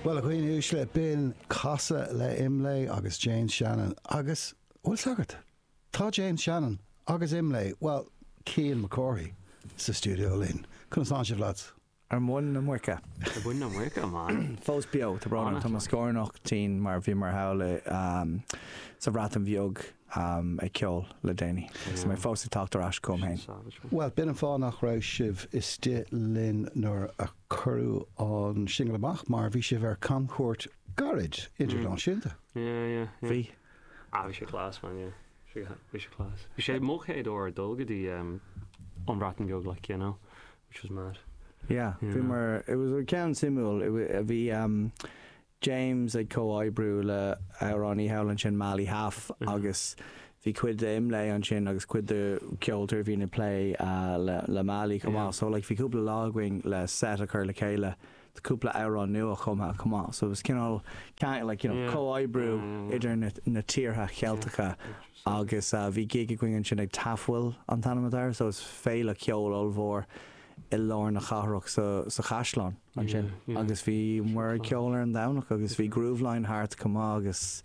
Bhuel, a dhaoine uaisle, b'in Casadh le Imlé agus James Shannon. Agus, a bhfuil 's agat? Tá James Shannon agus Imlé, bhuel, Cian Mac Cárthaigh, sa stiúideo linn. Conas tá sibh, lads? Ar mhuin na muice. Ar mhuin na muice, a man. Fós beo, tá brón orm. Tá mo scórnach tinn mar bhíomar thall sa Bhreatain Bheag. ag ceol le déanaí agus mé fós ag teacht ar ais chugam féin. Bhuel, b'in an fáth nach raibh sibh istigh linn nuair a cuireadh an singil amach, mar bhí sibh ar camchuairt gairid, idirnáisiúnta. Bhí. Ah, bhí sé class, man, yeah. Bhí sé class. Bhí sé mo chéad uair ag dul go dtí an Bhreatain Bheag, like, you know, which was mad. Yeah, bhíomar, it was, ceann suimiúil, bhí, James ag comhoibriú le amhránaí thall ansin Mali Haf agus bhí cuid de Imlé ansin agus cuid de ceoltóirí a bhíonn ag plé le Mali chomh maith so like bhí cúpla lá againn le set a chur le chéile do cúpla amhrán nuachumtha chomh maith so it was cineál ceangal like you know comhoibriú idir na na tíortha Ceilteacha agus bhí gig againn ansin ag Tafwyl an t-ainm atá air so is féile ceoil ollmhór i lár na cathrach sa sa chaisleán. ansin agus bhí muid ag ceol ar an Domhnach agus bhí Grooveline thart chomh maith agus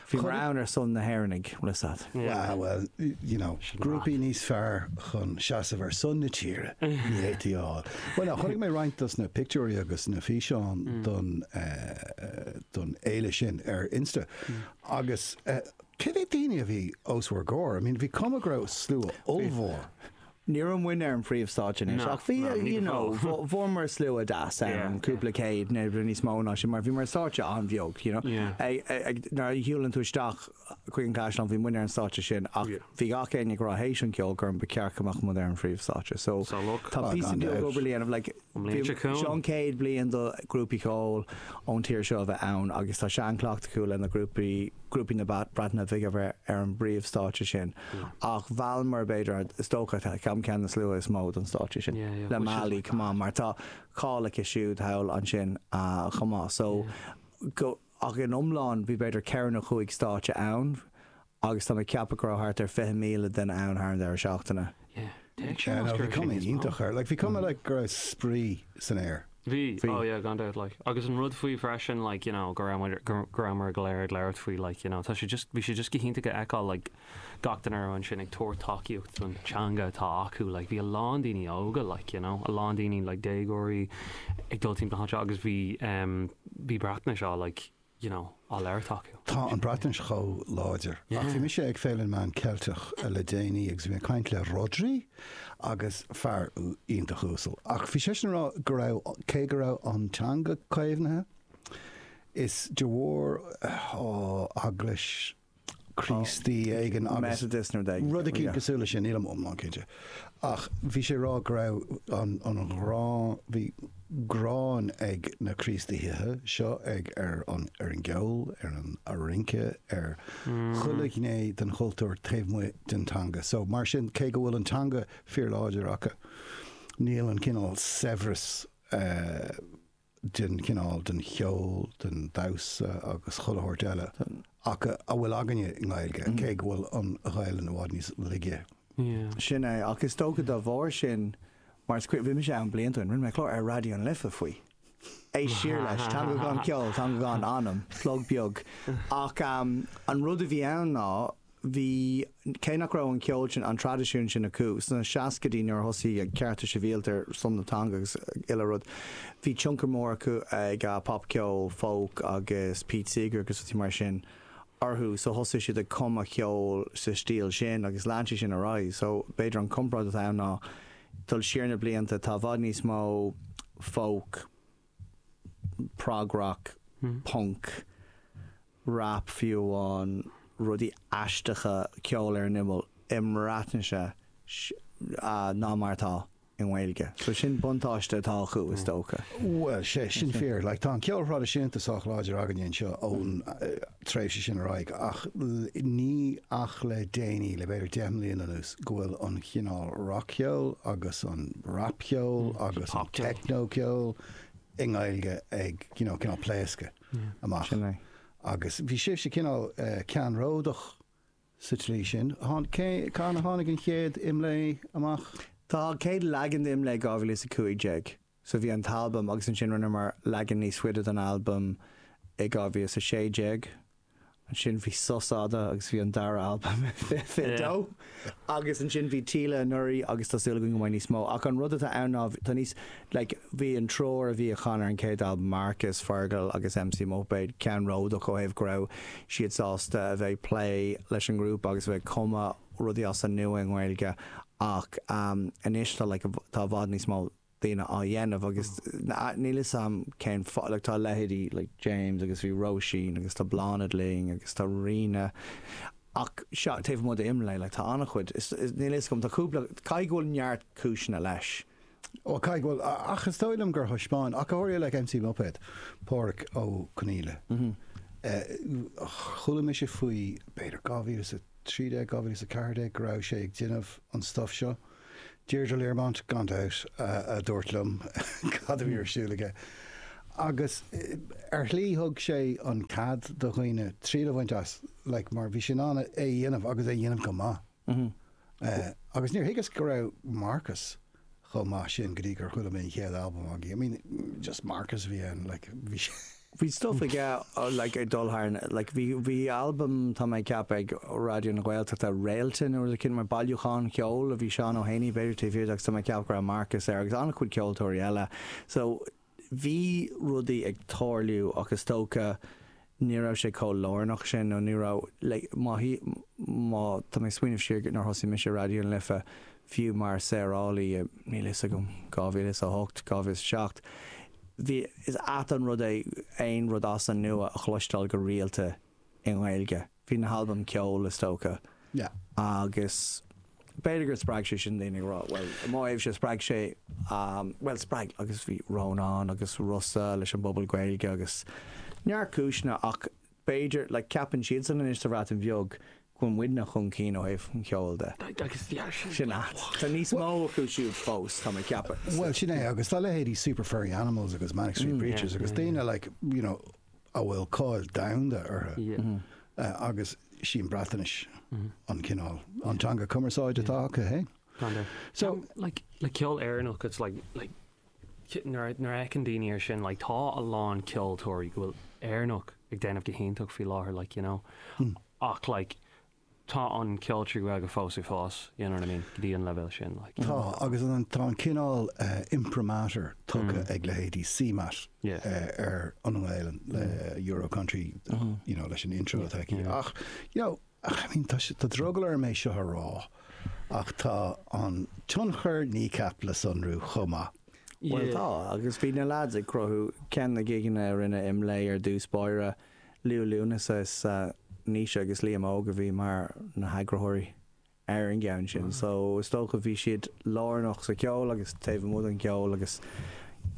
bhíomar ann ar son na hÉireannaigh, dar leat. Wow, well, you know, grúpaí níos fearr chun seasamh ar son na tíre ní fhéadfaí a fháil. Bhuel, chonaic mé roinnt dos na pictiúirí agus na físeáin don don fhéile sin ar Insta agus cé mhéad daoine a bhí os bhur gcomhair? I mean bhí cuma go raibh slua ollmhór. Ní raibh muidne ar an phríomhstáitse anois, ach bhí, you know, fuaireamar slua deas ann, cúpla céad, nó níos mó ná sin, mar bhí mar an stáitse an-bheag, you know. Nuair a shiúlann tú isteach chuig an gcaisleán, bhí muidne ar an stáitse sin, ach bhí gach éinne ag rá théis an cheoil gur ba cheart go mbeadh muid ar an phríomhstáitse. So tá píosa beag obair le déanamh, like. An bhliain seo chugainn. Seo an chéad bliain do ghrúpaí ceoil ón tír seo a bheith ann agus tá seanchleachtadh acu le na grúpaí grúpaí na Breataine Bige a bheith ar an bpríomhstáitse sin ach mheallamar b'fhéidir an is dócha an ceann de na sluaite is mó don stáitse sin le Mali chomh maith mar tá cáil aici siúd thall ansin chomh maith so go ach in iomlán bhí b'fhéidir ceithre nó chúig stáitse ann Agus tá mé ag ceapadh go raibh thart ar 20,000 duine ann thar an deireadh seachtaine. Yeah, téigh sé Yeah, no, bhí cuma iontach air. Like, bhí cuma like go raibh spraoi san aer. Bhí, Bhí. oh yeah, gan dabht, like. Agus an rud faoi freisin, like, you know, go raibh muid, go raibh muid ag léir- ag labhairt faoi, like, you know, tá sé just, bhí sé just go hiontach a fheiceáil, like, gach duine a raibh ansin ag tabhairt tacaíocht don teanga atá acu, like, bhí a lán daoine óga, like, you know, a lán daoine, like, déagóirí ag dul timpeall na háite, agus bhí, em, bhí Breatnais á, like, you know, á labhairt acu. Tá an Bhreatnais chomh láidir. Ach bhí mise ag Féile na Meán Ceilteacha le déanaí agus bhí mé ag caint le Rhodri agus fear iontach uasal ach bhí seisean ag rá go raibh, cé go raibh an teanga caomhnaithe, is de bharr, oh, eaglais Críostaí éigin agus rud éicínt cosúil leis sin, nílim iomlán cinnte. Ach bhí sé ag rá go raibh an ghráin, bhí gráin ag na Críostaithe seo ag ar an ar an gceol, ar an rince, ar chuile ghné den chultúr taobh amuigh den teanga. So mar sin, cé go bhfuil an teanga fíorláidir acu, níl an cineál saibhreas eh, den cineál, den cheol, den damhsa agus chuile shórt eile a bhfuil againne i nGaeilge, cé go bhfuil an Ghaelainn i bhfad níos laige. Yeah. Sin é, ach is dócha dá bharr sin, mar is cuimhin, bhí mise ann blianta ó shin, rinne mé clár ar Raidió na Life faoi. Éist siar leis, Teanga Gan Cheol, Teanga Gan Anam, plug beag. Ach an rud a bhí ann ná, bhí, cé nach raibh an ceol sin, an traidisiún sin acu sna seascaidí nuair a thosaigh cearta sibhialta ar son na teanga agus uile rud, bhí tionchar mór ag popcheol, folk agus Pete Seeger agus rudaí mar sin orthu so thosaigh siad ag cumadh ceol sa stíl sin agus lean sé sin ar aghaidh so b'fhéidir an comparáid atá ann ná dul siar na blianta tá i bhfad níos mó folk prog-rock, punc, rap fiú amháin, rudaí aisteacha, ceol ar an imeall i mBreatnais ná mar atá i nGaeilge. So sin buntáiste atá acu is dócha. Bhuel, tá sé sin fíor. Like, tá an ceol thraidisiúnta sách láidir againne anseo ón, tréimhse sin ar aghaidh, ach ní ach le déanaí, le b'fhéidir deich mbliana anuas, go bhfuil an chineál rac-cheoil agus an rapcheol agus an teicneocheol i nGaeilge ag you know cineál pléascadh amach. Agus bhí sibhse cineál ceannródach sa tslí sin. Cathain a tháinig an chéad Imlé amach? An chéad leagan de Imlé 2015. So bhí an t-albam agus ansin rinneamar leagan níos faide den albam i 2016. Ansin bhí sos fhada agus bhí an dara albam i 2022. Agus ansin bhí Téle anuraidh agus tá súil againn go mbeidh níos mó. Ach an rud atá ann ná tá níos, like, bhí an triúr a chan ar an chéad albam, Marcus, Fergal agus MC Muipéad, ceannródach ó thaobh go raibh siad sásta a bheith ag plé leis an ngrúpa agus a bheith ag cumadh rudaí as an nua i nGaeilge ach anois tá, like, tá i bhfad níos mó. daoine á dhéanamh agus níl 'fhios a'm cén fáth, like tá leithéidí like James agus bhí Róisín agus tá Bláthnaid linn agus tá Ríona ach sea, taobh amuigh d'IMLÉ like tá an-chuid, is níl 'fhios a'm, tá cúpla, caithfidh go bhfuil neart cúiseanna leis. Bhuel, caithfidh go bhfuil, ach is dóigh liom gur thaispeáin ach go háirithe like MC Muipéad, Páraic Ó Conaíle, chuala mise faoi b'fhéidir 2013, 2014 go raibh sé ag déanamh an stuff seo. Deirdre Learmont, gan dabht, a dúirt liom cad a bhí ar siúl aige. Agus ar shlí thug sé an cead do dhaoine triail a bhaint as, like, mar bhí sé in ann é a dhéanamh agus é a dhéanamh go maith. Agus níor thuigeas go raibh Marcus chomh maith sin go dtí gur chuala mé an chéad albam againn. I mean, just Marcus a bhí ann, like, bhí sé. bhí stuff ag like ag dul thar like bhí bhí albam tá mé ag ceapadh ag Raidió na Gaeltachta Réalta nó rud éigin mar bailiúchán ceoil a bhí Seán Ó hÉanaí b'fhéidir taobh thiar de agus tá mé ag ceapadh go raibh Marcus air agus an-chuid ceoltóirí eile so bhí rudaí ag tarlú ach is dócha ní raibh sé chomh lárnach sin nó ní raibh like má má tá mé ag smaoineamh siar nuair a thosaigh mise Raidió na Life Fiú mar saorálaí in, níl a fhios agam, 2008, 2007, bhí, is ait an rud é aon rud as an nua a chloisteáil go rialta i nGaeilge. Bhí na halbaim ceoil, is dócha. Yeah. Agus b'fhéidir gur spreag sé sin daoine ag rá, bhuel, i mo thaobhse, spreag sé, bhuel, spreag, agus bhí Rónán agus Rossa leis an bpobal Gaeilge agus neart cúiseanna ach b'fhéidir, like ceapann siadsan anois sa Bhreatain Bheag go bhfuil muidne chun cinn ó thaobh an cheoil de. Sin a, tá níos mó acu siúd fós, tá mé ag ceapadh. Bhuel, sin é, agus tá leithéidí Super Furry Animals agus Manic Street Preachers agus daoine like, you know, a bhfuil cáil domhanda orthu agus 'sí an Bhreatnais an cineál, an teanga cumarsáide atá acu, hey? So, like, le ceol Éireannach, it's like, like, Nuair a fheiceann daoine ar sin, like, tá a lán ceoltóirí go bhfuil Éireannach ag déanamh go hiontach faoi láthair, like, you know, ach, like, tá an ceol trí Ghaeilge fós ag fás, you know what I mean, go dtí an leibhéal sin, like, you know. Tá, agus tá an cineál imprimatur tugtha ag leithéidí CMAT ar an nGaelainn le Euro Country, you know, leis an intro atá aici, ach, you know, Ach I mean, tá sé, tá drogall orm é seo a rá, ach tá an tionchar Kneecap le sonrú chomh maith. Bhuel tá, agus bhí na lads ag cruthú, ceann de na gigeanna a rinne Imlé ar dtús báire, Liú Lúnasa is ea Naoise agus Liam Óg a bhí mar na heagraitheoirí ar an gceann sin, so is dócha bhí siad lárnach sa cheol agus taobh amuigh den cheol agus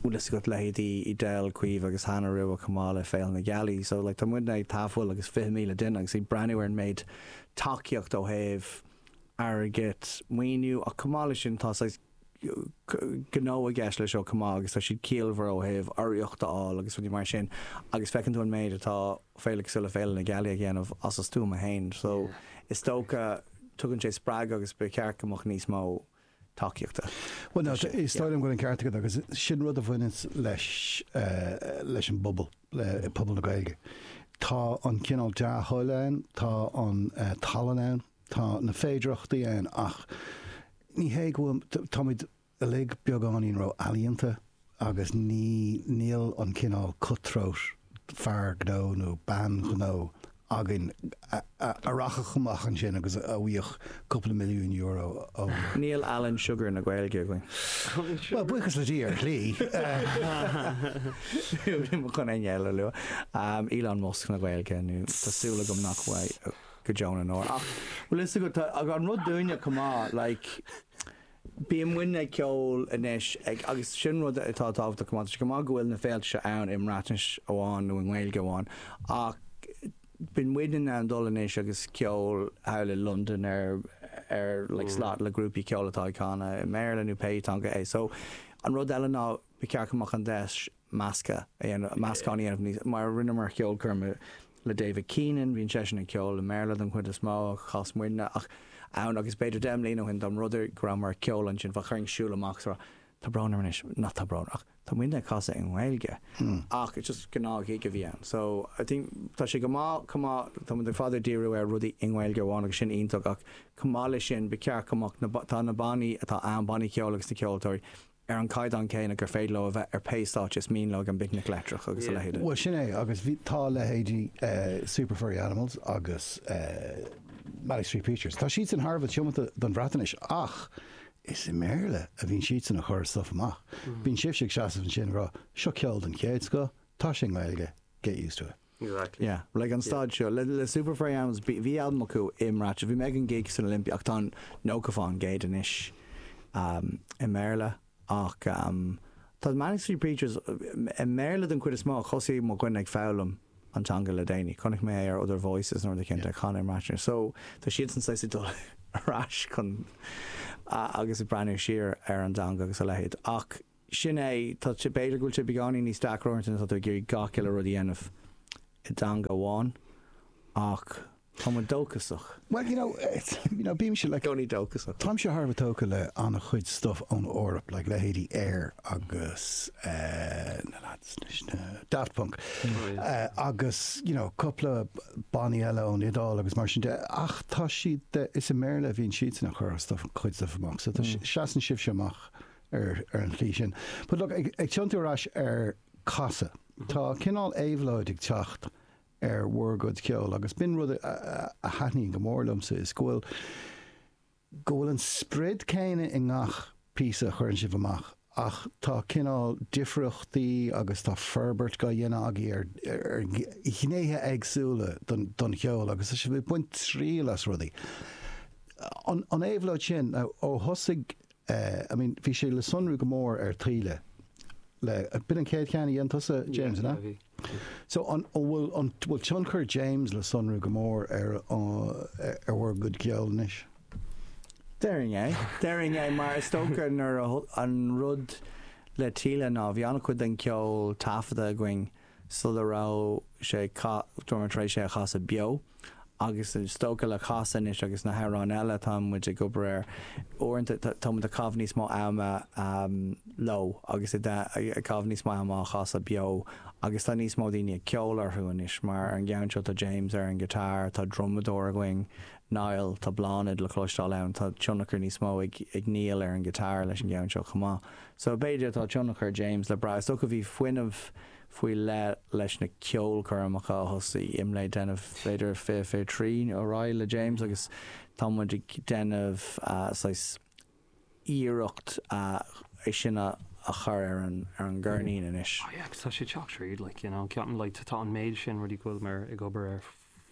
bhfuil fhios agat, leithéidí Edel, Caoimhe agus an ceannródaíocht chomh maith le Féile na Gealaí. So like tá muidne ag tafaill agus 20,000 duine agus ag breathnú ar an méid tacaíochta ó thaobh airgead, maoiniú ach chomh maith leis sin tá saghas gnó i gceist le seo chomh maith agus tá siad ciallmhar ó thaobh urraíocht a fháil agus rudaí mar sin agus feiceann tú an méid atá féile cosúil le Féile na Gealaí a dhéanamh as a stuaim fhéin. So is dócha tugann sé spreagadh agus ba cheart go mbeadh níos mó. tacaíochta. Bhuel, tá sé, is dóigh liom go bhfuil an ceart agat agus sin rud a bhaineanns leis, leis an bpobal, le pobal na Gaeilge. Tá an cineál dea-thoil ann, tá an tallann ann, tá na féidearthachtaí ann ach ní hé go bhfuil, táimid uilig beagáinín ró-ealaíonta Agus ní, níl an cineál cut-throat fear gnó nó bean ghnó againn a rachfadh amach ansin agus a bhfaigheadh cúpla milliún euro ó. Níl Alan Sugar na Gaeilge againn. Bhuel, buíochas le Dia, ar shlí. Gan éinne eile a lua, Elon Musk na Gaeilge, nó tá súil agam nach bhfuil go deo na ndeor. Ach bhfuil fhios agat, tá an rud dúinne chomh maith, like, Bíonn muidne ag ceol anois ag agus sin rud atá tábhachtach chomh maith. Tá sé go maith go bhfuil na féilte seo ann i mBreatnais amháin nó i nGaeilge amháin ach bíonn muidne in ann dul anois agus ceol thall i Londain ar ár like slot le grúpaí ceoil atá ag canadh i mBéarla nó pé teanga é. So an rud eile ná ba cheart go mbeadh an deis measctha a dhéanamh, meascán a dhéanamh níos, mar rinneamar ceolchoirm le David Keenan, bíonn seisean ag ceol i mBéarla don chuid is mó, ach chas muidne, ach ann agus b'fhéidir deich mbliana ó shin, dá mb'rud é go rabhamar ag ceol ansin, bheadh orainn siúl amach sa, tá brón orm anois, nach tá brón, ach tá muidne ag casadh i nGaeilge, ach just gnáth-ghig a bhí ann, so I think tá sé go maith, chomh maith, tá muid le fada ag díriú ar rudaí i nGaeilge amháin agus sin iontach, ach chomh maith leis sin, ba cheart go mbeadh na, tá na bannaí atá ann, bannaí ceoil agus na ceoltóirí, ar an gcaighdeán céanna gur féidir leo a bheith ar pé stáitse is mian leo ag an bPicnic Leictreach agus a leithéide. Bhuel, sin é, agus bhí, tá leithéidí Super Furry Animals agus Manic Street Preachers, tá siadsan thar a bheith tiomanta don Bhreatainis ach is i mBéarla a bhíonn siadsan ag cur stuif amach. Bíonn sibhse ag seasamh ansin ag rá, 'seo ceol den chéad scoth, tá sé i nGaeilge, get used to it'. Exactly. Yeah, like an stáid seo le Super Furry Animals, bhí albam acu i mBreatnais, bhí mé ag an gig san Olympia ach tá nócha fán gcéad anois i mBéarla ach tá Manic Street Preachers i mBéarla don chuid is mó ach thosaigh mo dhuine ag foghlaim an teanga le déanaí, chonaic mé é ar Other Voices nó rud éicint ag canadh i mBreatnais so tá siadsan saghas ag dul ar ais chun agus ag breathnú siar ar an dteanga agus a leithéid ach Sin é, tá, b'fhéidir go bhfuil sé beagáinín níos deacra uaireanta nuair atá tú ag iarraidh gach uile rud a dhéanamh i dteanga amháin, ach tá muid dóchasach. Bhuel, you know, bímse, like, gcónaí dóchasach. Táimse thar a bheith tógtha le an-chuid stuff ón Eoraip, like, leithéidí Air agus eh na lads eile sin, Daft Punk, eh agus, you know, cupla bannaí eile ón Iodáil agus mar sin de, ach tá siad, is i mBéarla a bhíonn siadsan a' chur a' stuff, cuid stuff amach, so tá, seasann sibhse amach ar an tslí sin. But look, ag tiontú ar ais ar Casadh, tá cineál éabhlóid ag teacht ar bhur gcuid ceoil agus b'in rud a thaitníonn go mór liomsa is go bhfuil, go bhfuil an sprid céanna i ngach píosa a chuireann sibh amach ach tá cineál difríochtaí agus tá forbairt gá dhéanamh agaibh ar ghnéithe éagsúla den cheol agus tá sibh ag baint triail as rudaí. An éabhlóid sin, ó thosaigh Eh, I mean, bhí sé le sonrú go mór ar Taoille, b'in an chéad cheann a dheinis-se, James, an ea? Yeah, bhí. So, an bhfuil, an bhfuil tionchar James le sonrú go mór ar, ar bhur gcuid ceoil anois? Déarfainn é. Déarfainn é mar is dócha nuair a, an rud le Taoille ná bhí an-chuid den ceol taifeadta againn, sula raibh sé againn, bhíomar tar éis é a chasadh beo, agus is dócha le Casadh anois agus na hamhráin eile atá muid ag obair air, uaireanta tá muid ag caitheamh níos mó ama leo agus ag caitheamh níos mó ama á chasadh beo, agus tá níos mó daoine ag ceol orthu anois, mar ar an gceann seo tá James ar an ngiotár, tá drumadóir againn, Niall, tá Bláthnaid le cloisteáil ann, tá tionchar níos mó ag Niall ar an ngiotár leis an gceann seo chomh maith. So b'fhéidir tá tionchar James le brath, is dócha, bhí fuinneamh faoi leith leis na ceolchoirmeacha a thosaigh muid ag déanamh, b'fhéidir fiche fiche trí ar aghaidh le James agus tá muid ag déanamh saghas iarracht é sin a chur ar an gceirnín anois. Oh yeah, agus tá sé ag teacht tríd, like, you know, ceapaim, like, tá an méid sin rudaí go bhfuil mé ag obair air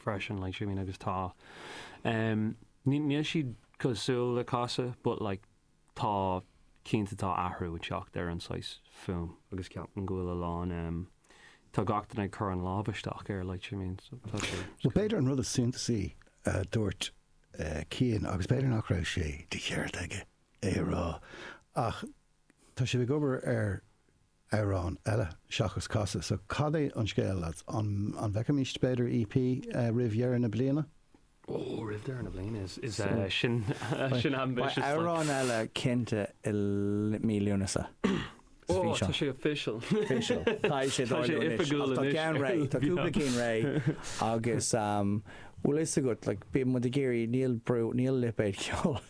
freisin, like, you know what I mean, agus tá, em, níl siad cosúil le Casadh but, like, tá cinnte tá athrú ag teacht ar an saghas fuaim. agus ceapaim go bhfuil a lán em. tá gach duine ag cur a lámh isteach air like you know what I mean so tá sé. Bhuel, b'fhéidir an rud is suntasaí a dúirt eh Cian, agus b'fhéidir nach raibh sé de cheart aige é a rá, ach tá sibh ag obair ar, amhrán eile seachas Casadh. So cad é an scéal lads? An bhfeicfimid b'fhéidir EP roimh dheireadh na bliana? Ó roimh deireadh na bliana is is sin sin ambitious like. Beidh amhrán eile cinnte i mí Lúnasa. Ó tá sé official. Official. Tá sé ráite anois. Tá sé oifigiúil anois. Tá ceann réidh. Tá cúpla cinn réidh agus bhfuil fhios agat like bíonn muid ag iarraidh níl brú níl lipéad ceoil.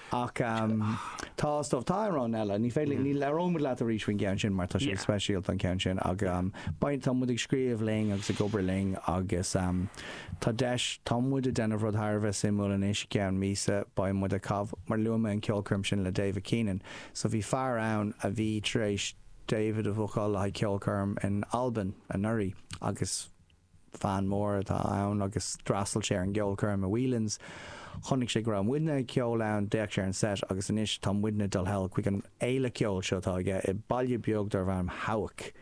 Ach tá, is dóigh, tá amhráin eile. Ní féidir, ní labhróidh muid leat arís faoin gceann sin mar tá sé speisialta an ceann sin ach beidh, tá muid ag scríobh linn agus ag obair linn agus tá deis, tá muid ag déanamh rud thar a bheith suimiúil anois, i gceann míosa beidh muid ag caitheamh, mar luaigh mé an ceolchoirm sin le David Keenan so bhí fear ann a bhí tar éis David a bhookáil le haghaidh ceolchoirm in Albain anuraidh agus. fan mór atá ann agus d'fhreastail sé ar an gceolchoirm i Whelan's. Chonaic sé go raibh muidne ag ceol ann, d'fhéach sé ar an set agus anois tá muidne dul thall chuig an fhéile ceoil seo atá aige i baile beag darb ainm Hawick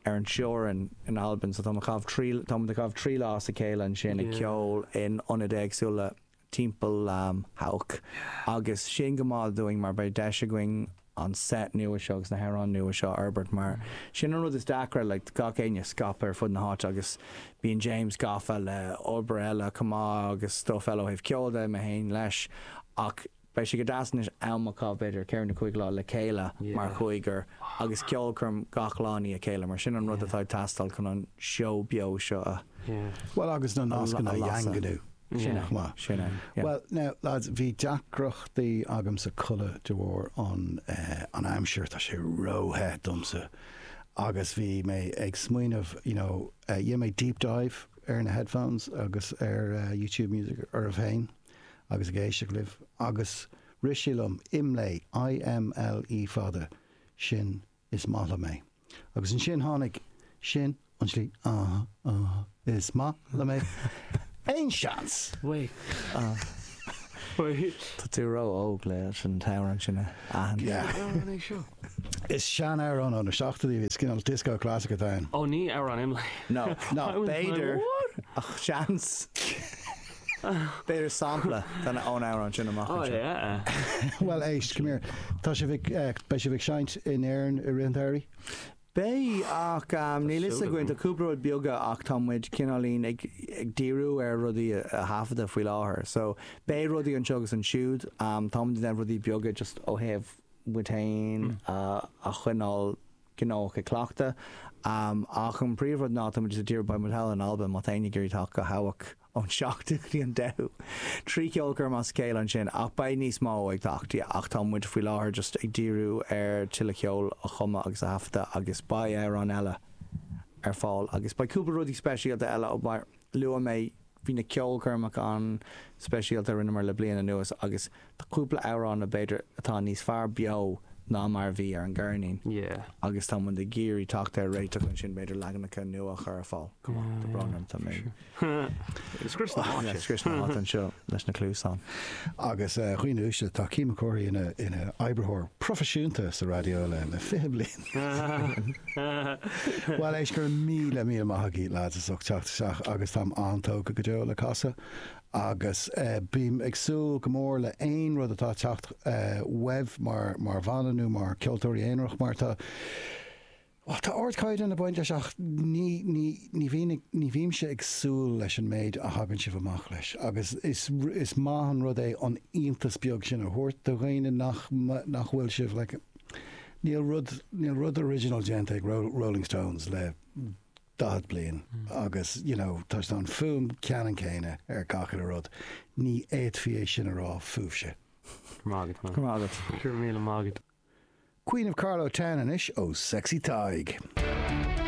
ar an teorainn in Albain. So táimid ag caitheamh trí lá as a chéile ansin ag ceol in ionaid éagsúla timpeall Hawick. Agus sin go maith dúinn mar beidh deis againn an set nua seo agus na hamhráin nua seo a fhorbairt mar sin an rud is deacra, like gach éinne scaipthe ar fud na háite agus bíonn James gafa le obair eile chomh maith agus stuff eile ó thaobh ceoil de, mé féin leis ach beidh sé go deas anois am a chaitheamh b'fhéidir ceithre nó cúig lá le chéile mar chúigear agus ceolchoirm gach lá i ndiaidh a chéile mar sin an rud atá ag teastáil chun an seó beo seo a Bhuel agus na nascanna a dhaingniú. Sin é. Maith. Sin é. Yeah. Bhuel, now, lads, bhí deacrachtaí agamsa codladh de bharr an eh, an aimsir, tá sé ró-the domsa agus bhí mé ag smaoineamh, you know, eh, dhéan mé deep dive ar na headphones agus ar YouTube Music oraibh féin agus ag éisteacht libh agus rith sé liom, imlé, I-m-l-e fada, sin is maith liom é. Agus ansin tháinig, sin an slí, ah, ah, is maith liom é. Aon seans? Tá tú ró óg le sin tamhran sin a aithint. Is sean amhrán ó na seachtóidí a bhí cineál disco classic atá ann. Ó ní amhrán imlé. No, no, b'fhéidir ach seans. B'fhéidir sampla ón amhrán sin amach anseo. Bhuel éist, come here, tá sibh ag, beidh sibh ag seinnt in Éirinn i rith an tsamhraidh? Beidh, ach níl 'fhios againn, tá cúpla rud beaga ach tá muid cineáilín ag díriú ar rudaí a thaifeadadh faoi láthair. So, beidh rudaí anseo agus ansiúd, tá muid ag déanamh rudaí beaga just ó thaobh muid féin a choinneáil gnóthach ag cleachtadh ach an príomhrud ná tá muid just ag díriú, beidh muid thall in Albain, má tá éinne ag iarraidh teacht go Hawick, ón seachtú go dtí an deichiú. Trí cheolchoirm as a chéile ansin, ach beidh níos mó ag teacht, yeah, ach tá muid faoi láthair just ag díriú ar tuilleadh ceoil a chumadh agus a thaifeadadh agus beidh amhráin eile ar fáil agus beidh cúpla rudaí speisialta eile mar luaigh mé bhí na ceolchoirmeacha an-speisialta a rinneamar le bliain anuas agus Tá cúpla amhrán b'fhéidir atá níos fearr beo ná mar a bhí ar an gceirnín agus tá muid ag iarraidh teacht ar réiteach ansin, b'fhéidir leaganacha nua a chur ar fáil. Tá brón orm, tá mé ag scrios na háite anseo leis na cluasáin. Agus dhaoine uaisle, tá Cian Mac Cárthaigh ina oibritheoir proifisiúnta sa raidió le fiche bliain. Bhuel, éist, go raibh míle míle maith agaibh, lads, as ucht teacht isteach agus táim an-tógtha go deo le casadh agus bím ag súil go mór le aon rud atá ag teacht uaibh mar bhanna nó mar ceoltóirí aonarach mar tá bhuel tá ardchaighdeán ag baint leis ach ní ní ní bhíonn ag ní bhímse ag súil leis an méid a thagann sibh amach leis agus is is maith an rud é an iontas beag sin a thabhairt do dhaoine nach nach bhfuil sibh like níl rud níl rud original déanta ag Rolling Stones le 40 bliain agus you know tá sé an fhuaim cheannann chéanna ar gach uile rud. Ní fhéadfaí é sin a rá fúibhse. Go raibh maith agat, man. Go raibh maith agat. Go raibh míle maith agat. Queen of Carlow Town anois ó Sexy Tadhg.